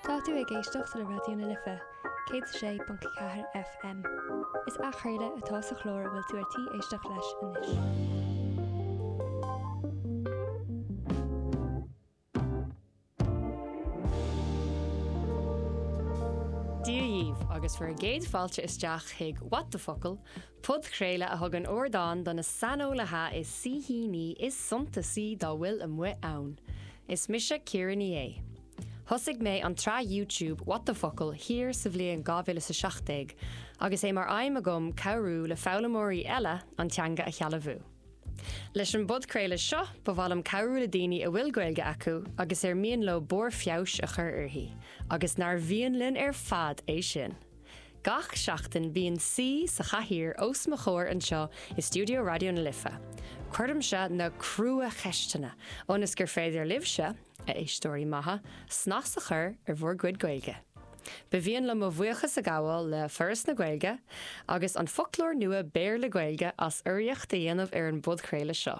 Tá tú ag éisteacht le Raidió na Life, 106.4 FM. Is athchraoladh atá sa chlár a bhfuil tú ar tí éisteacht leis anois. Dia dhíbh agus bhur gcéad fáilte isteach chuig What the Focal, podchraoladh a thugann ardán do na saineolaithe is saoithíní is suntasaí dá bhfuil amuigh ann. Is mise Ciara Ní É. Thosaigh mé an tsraith YouTube What the Focal thiar sa bhliain 2017 agus é mar aidhm agam cabhrú le foghlaimeoirí eile an teanga a shealbhú. Leis an bpodchraoladh seo, ba mhaith liom cabhrú le daoine a bhfuil Gaeilge acu agus ar mian leo barr feabhais a chur uirthi, agus nár mhian linn ar fad é sin! Gach seachtain bíonn saoi sa chathaoir os mo chomhair anseo i stiúideo Raidió na Life. Cuirimse na crua-cheisteanna ionas gur féidir libhse, a éisteoirí maithe, snas a chur ar bhur gcuid Gaeilge. Ba mhian liom mo bhuíochas a ghabháil le Foras na Gaeilge agus an foclóir nua Béarla-Gaeilge as urraíocht a dhéanamh ar an bpodchraoladh seo.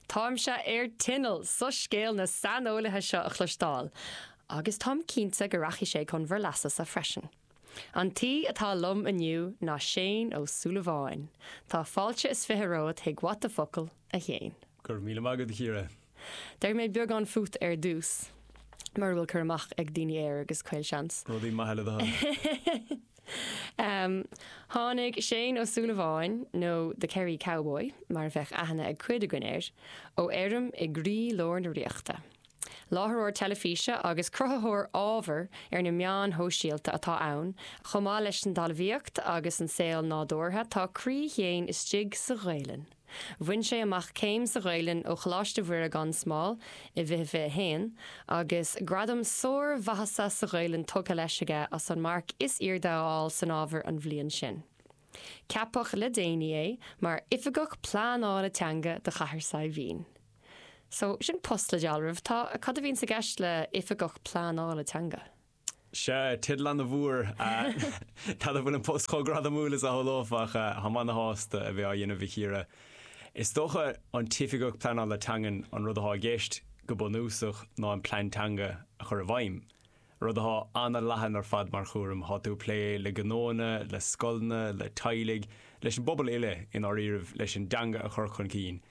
Táimse ar tinneall soiscéal na saineolaithe seo a chloisteáil, agus táim cinnte go rachaidh sé chun bhur leasasa freisin. An t-aoi atá liom inniu ná Séan Ó Súilleabháin. Tá fáilte is fiche romhat chuig What the Focal, a Shéain. Go raibh míle maith agat, a Chiara. Déarfaidh mé beagán faoi ar dtús, mura bhfuil cur amach ag daoine air, agus caol seans. Rudaí maithe le do thoil. Um tháinig Séan Ó Súilleabháin, nó The Kerry Cowboy mar a bheadh aithne ag cuid againn air, ó fheirm i gcroí lár na Ríochta. Láithreoir teilifíse agus cruthaitheoir ábhair ar na meáin shóisialta atá ann, chomh maith leis an dtalmhaíocht agus an saol nádúrtha, tá croí Shéain istigh sa Ghaelainn. Bhain sé amach céim sa Ghaelainn ó Choláiste Mhuire gan Smál i bhfiche fiche a haon, agus gradam sármhaitheasa sa Ghaelainn tugtha leis aige as an marc is airde a fháil san ábhar an bhliain sin. Ceapadh le déanaí é mar Oifigeach Pleanála Teanga do Chathair Saidhbhín. So, sin post le dealramh. Tá, cad a bhíonn i gceist le Oifigeach Pleanála Teanga? Sea, teideal an-mhór. N'fheadar an bhfuil an post chomh gradamúil is a shamhlófá. Táim ana-shásta a bheith á dhéanamh, a Chiara. Is dócha, an tOifigeach Pleanála Teangan, an rud atá i gceist, go bunúsach, ná an Plean Teanga a chur i bhfeidhm. Rud atá ana-leathan ar fad mar chúram. Tá tú ag plé le gnóanna, le scoileanna, le teaghlaigh, leis an bpobal uile, i ndáiríribh, leis an dteanga a chur chun cinn.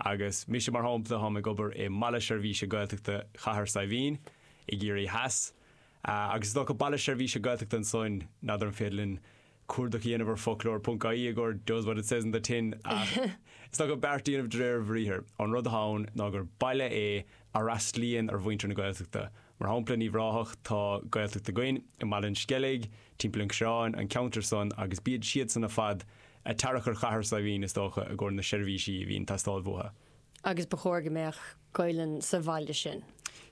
Agus mise, mar shampla, táim ag obair i mBaile Seirbhíse Gaeltachta Chathair Saidhbhín, i gCiarraí Theas. Agus is dócha Baile Seirbhíse Gaeltachta ansoin, n'fheadar an féidir linn cuardach a dhéanamh ar foclóir ponc aí i gcomhair does what it says on the tin ach is dócha beart a dhéanamh de réir a bhriathar. An rud atá ann ná gur baile é a fhreastlaíonn ar mhuintir na Gaeltachta. Mar shampla in Uíbh Ráthach tá Gaeltacht againn, i mBaile an Sceilg, timpeall an Choireáin, an ceantar san agus bíd siadsan ar fad ag tarrac ar Chathair Saidhbhín is dócha i gcomhair na seirbhísí a bhíonn ag teastáil bhuatha. Agus ba chóir go mbeadh. Gaelainn sa bhaile sin.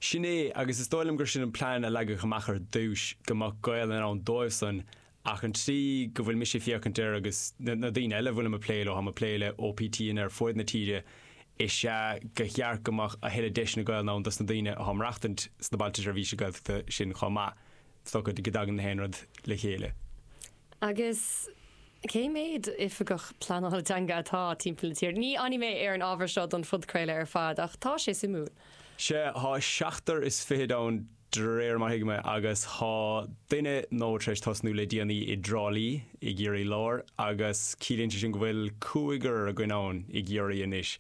Sin é, agus is dóigh liom gur sin an plean a leagadh amach ar dtúis, go mbeadh Gaelainn ann dóibh-san, ach an tslí go bhfuil mise ag féachaint air agus na daoine eile a bhfuilim ag plé leo, táim ag plé le OPTanna ar fuaid na tíre, is ea gur cheart go mbeadh a thuilleadh deiseanna Gaelainn ann dos na daoine atá ag maireachtaint sna Bailte Seirbhíse Gaeltachta sin chomh maith, so go dtagann na haon rud le chéile. Agus Cé mhéad Oifigeach Pleanála Teanga atá timpeall na tíre? Ní fhanfaidh mé ar an ábhar seo don phodchraoladh ar fad, ach tá sé suimiúil. Sea, thá seachtar is fichid ann de réir mar thuigim é, agus thá duine nua tar éis tosnú le déanaí i dTrá Lí, i gCiarraí Láir, agus ciallaíonn sé sin go bhfuil cúigear againn ann i gCiarraí anois.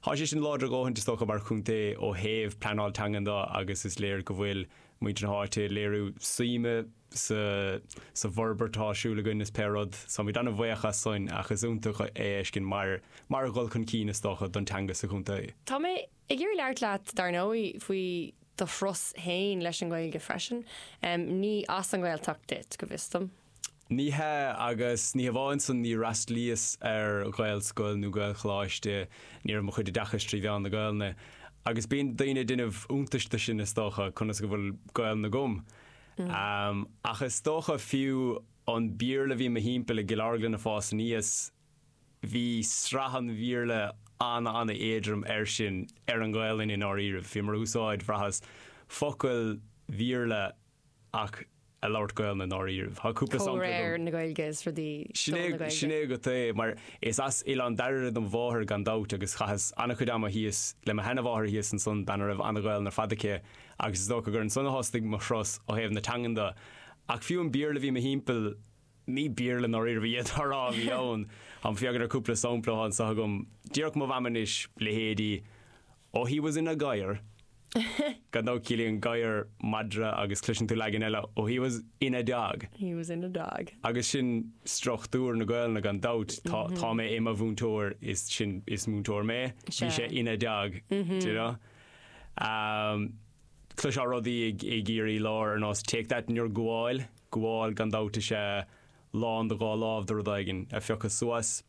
Thá sé sin láidir a dhóthaint, is dócha, mar chontae ó thaobh pleanáil teangan do, agus is léir go bhfuil muintir na háite ag léiriú suime sa bhforbairt atá ar siúl againn is pé rud. Táimíd ana-bhuíoch as soin ach is iontach é a fheiscint mar mar dhul chun cinn is dócha don teanga sa chontae. Tá mé ag iarraidh labhairt leat, dar ndóigh, faoi do thuras fhéin leis an nGaeilge freisin. Ní as an nGaeltacht duit, go bhfios dom. Ní hea, agus ní hamháin san, níor fhreastlaíos ar Ghaelscoil nó Gaelcholáiste, ní raibh mo chuid oideachais trí mheán na Gaelainne, agus bíonn daoine ag déanamh iontais de sin, is dócha, conas go bhfuil Gaelainn agam. Ach is dócha, fiú an Béarla a bhí 'mo thimpeall i gCill Orglan ag fás aníos, bhí sraith an Bhéarla an-an-éadrom air sin, ar an nGaelainn i ndáiríribh. Bhíomar ag úsáid, bhraitheas, focail Bhéarla ach ag labhairt Gaolainn i ndáiríribh. Tá cúpla sampla agam. Comhréir na Gaeilge is rudaí do na Gaeilge. Sin é agat é, mar is as Oileán Dairbhre do mo mháthair gan dabht agus chaitheas an-chuid ama thíos le mo sheana-mháthair thíos ansan, bean a raibh an-Ghaolainn ar fad aici agus is dócha gur ansan a thosnaigh mo thuras ó thaobh na teangan do. Ach fiú an Béarla a bhí mo thimpeall, Ní Béarla i ndáiríribh iad a rá. Bhí ann, tá mé ag féachaint ar cúpla sampla annso agam, déarfadh mo Mham anois leithéidí Oh he was in a gadhar, gan dabht ciallaíonn gadhar madra agus cloiseann tú leagan eile Oh he was in a dog. He was in a dog. Agus sin struchtúr na Gaolainne gan dabht, tá, tá mé i mo mhúinteoir is sin, is múinteoir mé, bhí sé ina dog, do you know. Cloisfeá rudaí i gCiarraí Láir ar nós Take that in your gabháil. Gabháil gan dabht is ea lán do dhá láimh de rud éigin a phiocadh suas.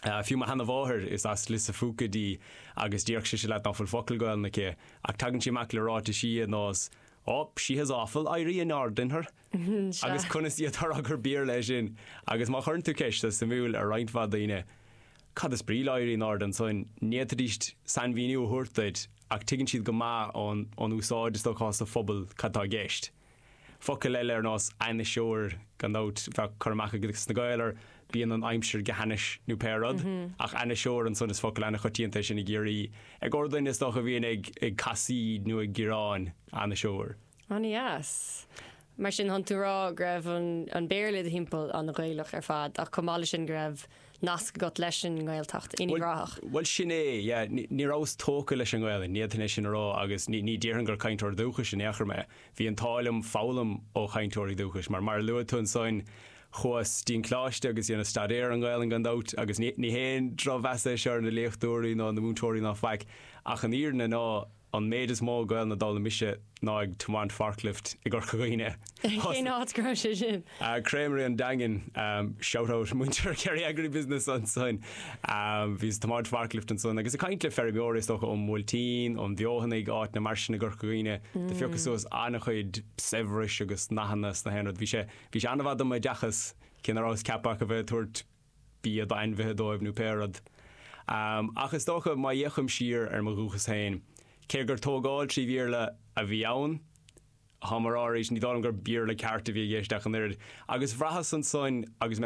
Fiú mo sheana mháthair, is as Lios a' Phúca dí agus déarfadh sise leat ná fuil focal Gaolainne aici ach tagann sí amach le ráitisí ar nós Ó, she has awful éirí in airde in her. Agus conas a fhéadfá a rá gur Béarla é sin agus má chuireann tú ceist is suimiúil ar roinnt mhaith daoine Cad is brí le éirí in airde ansan? ní fhéadfaidíst sainmhíniú a thabhairt duit ach tuigeann siad go maith ón úsáid is dócha sa phobal cad tá i gceist. Focal eile ar nós ainniseoir, gan dabht, tá cur amach ages na Gaeil ar bíonn an aimsir go hainnis nó pé rud, ach ainniseoir ansan is focal an-choitianta é sin i gCiarraí. I gcóir duine, is dócha, a bhíonn ag casaoid nó ag gearán, ainniseoir. An-dheas. Mar sin, tánn tú a rá go raibh an Béarla i do thimpeall an-Ghaelach ar fad ach chomh maith le sin go raibh nasc agat leis an nGaeltacht in Uíbh Ráthach. Bhuel sin é, yeah, ní rabhas tógtha leis an nGaelainn, ní fhéadfainn é sin a rá agus ní, ní déarfainn gur cainteoir dúchais in aon chor mé. Bhí an t-ádh liom foghlaim ó chainteoirí dúchais mar, mar a luaigh tú ansoin, chuas dtí'n Coláiste agus dheineas staidéar ar an Ghaelainn gan dabht agus ní, ní haon drochmheas é seo ar na léachtóirí ná na múinteoirí ná faic ach an fhírinne ná, An méid is mó Gaelainne a d'fhoghlaim mise ná ag tiomáint forklift i gCorca Dhuibhne. Cén áit go raibh sé sin? Creamery an Daingin. Shout out muintir Kerry Agribusiness ansoin. Bhíos ag tiomáint forklift ansan agus ag caint le feirmeoiri is dócha ón mBuailtín, ón bhFeothanaigh, áiteanna mar sin i gCorca Dhuibhne. Do phiocas suas an-chuid saibhris agus nathanna is gach aon rud. Bhí sé, bhí sé an-mhaith do m'oideachas, cé ná rabhas ceaptha ach a bheith ag tabhairt, bia d'ainmhithe dóibh nó pé rud. Ach is dócha, má fhéachaim siar ar mo dhúchas féin, cé gur tógáil trí Bhéarla a bhí ann, táim á rá arís, ní dóigh liom gur Béarla ceart a bhí i gceist ach an oiread. Agus bhraitheas ansoin agus mé ag.